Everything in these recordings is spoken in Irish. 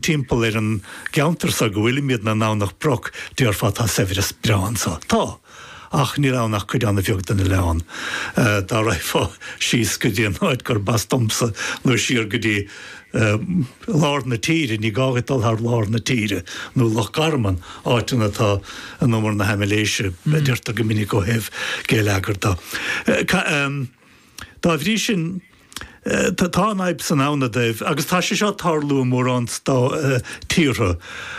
timpeall ar an gceantar so go bhfuilimid ann i nDomhnach Broc déarfá tá saibhreas breá anso. Tá. Ach níl ann ach cuid ana bheag den oileán. Dá raghfá síos go dtí an áit gurb as domsa nó siar go dtí lár na tíre, ní gá dhuit dul thar lár na tíre, nó Loch Garman, áit ina tá an in umar na haimléise a deirtear go minic ó thaobh geilleagair de. Dá bhrí sin, tá an fhadhb san ann dóibh agus tá sé seo ag tarlú i mórán tíortha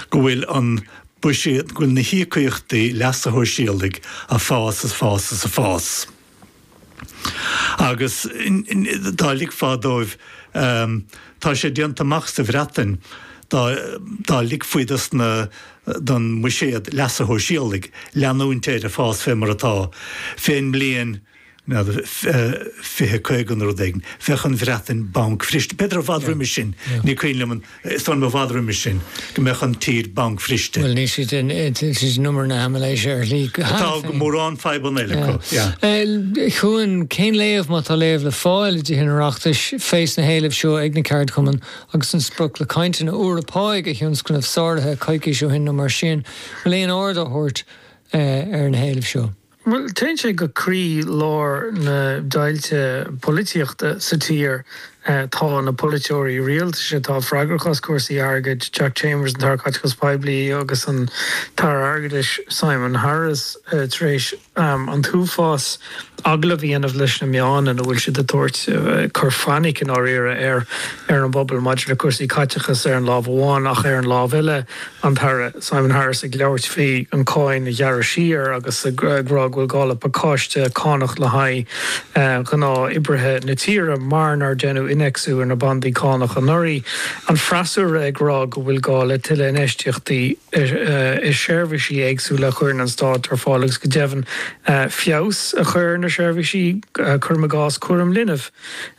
go bhfuil an buiséad, go bhfuil na híocaíochtaí leasa shóisialaigh ag fás is fás is fás. Agus dá ligfí dóibh, tá sé déanta amach sa Bhreatain, dá ligfí don mbuiséad leasa shóisialaigh leanúint air ag fás fé mar atá, fén mbliain N'fheadar, fiche, caoga nó rud éigin. Bheadh an Bhreatain bancbhriste. B'fhéidir i bhfad roimis sin, ní cuimhin liom, is dóigh liom i bhfad roimis sin, go mbeadh an tír bancbhriste. Bhuel, níl siad in umar na haimléise ar shlí, cheana féin. Tá mórán fadhbanna eile acu, yeah. Cuan, cén léamh, má tá léamh le fáil i dTithe an Oireachtais, fé sna héilimh seo ag na ceardchumainn agus an sprioc le cainteanna úra pá a thionscnamh sáraithe coicís ó shin nó mar sin? Bhfuil aon aird á thabhairt ar na héilimh seo? Bhuel, téann sé go croí lár na deighilte polaitíochta sa tír. Tá na polaiteoirí rialtais atá freagrach as cúrsaí airgid, Jack Chambers, an tAire Caiteachais Poiblí, agus an tAire Airgeadais, Simon Harris, tar éis an t-uafás agallamh a dhéanamh leis na meáin ina bhfuil siad ag tabhairt cur fainic, i ndáiríre, ar an bpobal maidir le cúrsaí caiteachais ar an lámh amháin ach, ar an lámh eile, An tAire Simon Harris ag labhairt faoi an cáin a ghearradh siar agus ag rá go bhfuil gá le pacáiste cánach le haghaidh ghnáth oibrithe na tíre mar nár deineadh innéacsú ar na bandaí cánach anuraidh. An freasúra ag rá go bhfuil gá le tuilleadh infheistíochta i seirbhísí éagsúla a chuireann an Stát ar fáil agus go deimhin feabhas a chur ar na seirbhísí, cuirim i gcás cúram linbh,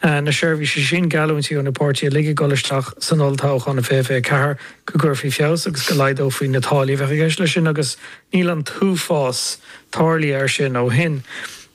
na seirbhísí sin. Geallúintí ó na páirtithe uilig ag dul isteach san olltoghchán 2024 go gcuirfí feabhas agus go laghdófaí na táillí a bheadh i gceist leis sin agus níl an t-uafás tarlaithe air sin ó shin.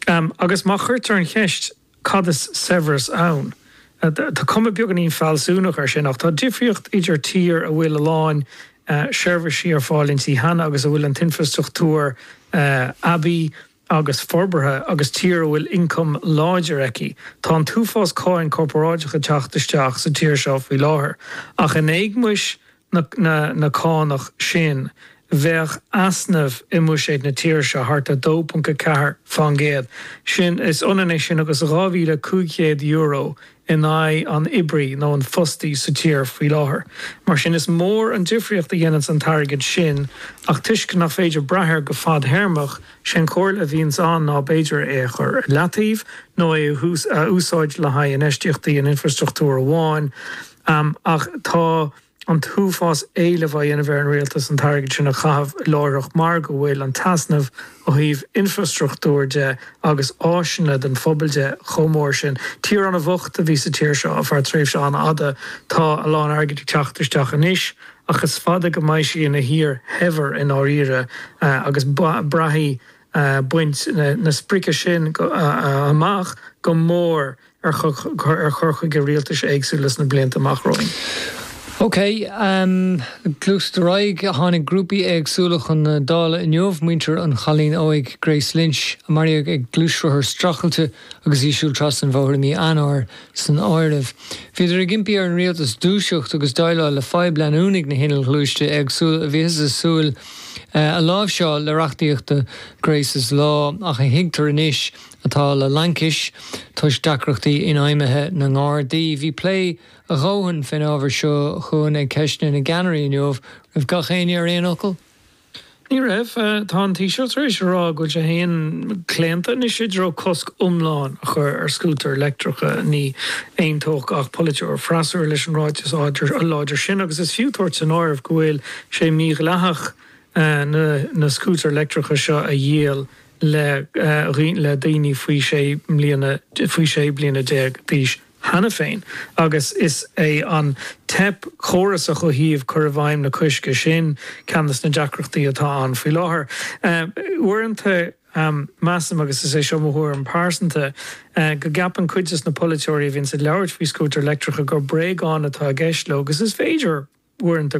Agus má chuirtear an cheist cad is saibhreas ann? tá cuma beaganín fealsúnach ar sin ach tá difríocht idir tír a bhfuil a lán seirbhísí ar fáil inti cheana agus a bhfuil an t-infrastruchtúr aibí, agus forbartha agus tír a bhfuil ioncam láidir aici. Tá an t-uafás cáin corparáideach ag teacht isteach sa tír seo faoi láthair, ach in éagmais na cánach sin bheadh easnamh i mbuiséad na tíre seo thart 2.4%. Sin, is ionann é sin agus €2,500 in aghaidh an oibrí nó an fostaí sa tír faoi láthair. Mar sin, is mór an difríocht a dhéanann an t-airgead sin, ach toisc nach féidir brath air go fad-théarmach, sé an chomhairle a bhíonns ann ná b'fhéidir é a chur ar leataobh nó é a úsáid le haghaidh infheistíochtaí in infrastruchtúr amháin, ach tá. an t-uafás éilimh á dhéanamh ar an Rialtas an t-airgead sin a chaitheamh láithreach mar go bhfuil an t-easnamh ó thaobh infreastruchtúir de agus áiseanna don phobal de chomh mór sin. Tír an-bhocht a bhí sa tír seo ar feadh tréimhse an-fhada. Tá a lán airgid ag teacht isteach anois ach is fada go mbeidh sí ina tír shaibhir i ndáiríre agus braithfidh baint na sprice sin amach go mór ar chur chuige rialtais éagsúla sna blianta amach romhainn. OK. Gluaisfear ar aghaidh. Tháinig grúpaí éagsúla chun na Dála inniu, muintir an chailín óig Grace Lynch, a maraíodh ag gluaisrothar streachailte agus í ag siúl trasna an bhóthair i mí Eanáir, san áireamh. Bhíodar ag impí ar an rialtas dúiseacht agus déileáil le fadhb leanúnach na n-inneall gluaiste éagsúla a bhíothas ag súil a láimhseáil le reachtaíocht 'Grace's Law' ach a thuigtear anois atá le laincis toisc deacrachtaí infheidhmithe na nGardaí. Bhí plé a dhóthain fén ábhar seo chugainn ag Ceisteanna na gCeannairí inniu. An raibh gach éinne ar aon fhocal? Ní raibh. Tá an Taoiseach tar éis a rá go bhfuil sé féin claonta anois i dtreo cosc iomlán a chur ar scútair leictreacha. Ní aontódh gach polaiteoir freasúra leis an ráiteas láidir sin agus is fiú tabhairt san áireamh go bhfuil sé mídhleathach na scútair leictreacha seo a dhíol. le daoine faoi sé bliana faoi sé bliana déag d'aois cheana féin agus is é an teip chórasach ó thaobh cur i bhfeidhm an choisc sin ceann de na deacrachtaí atá ann faoi láthair. Uaireanta measaim, agus is é seo mo thuairim phearsanta, go gceapann cuid de na polaiteoirí a bhíonns ag labhairt faoi scútair leictreacha gur bréagáin atá i gceist leo agus is féidir uaireanta,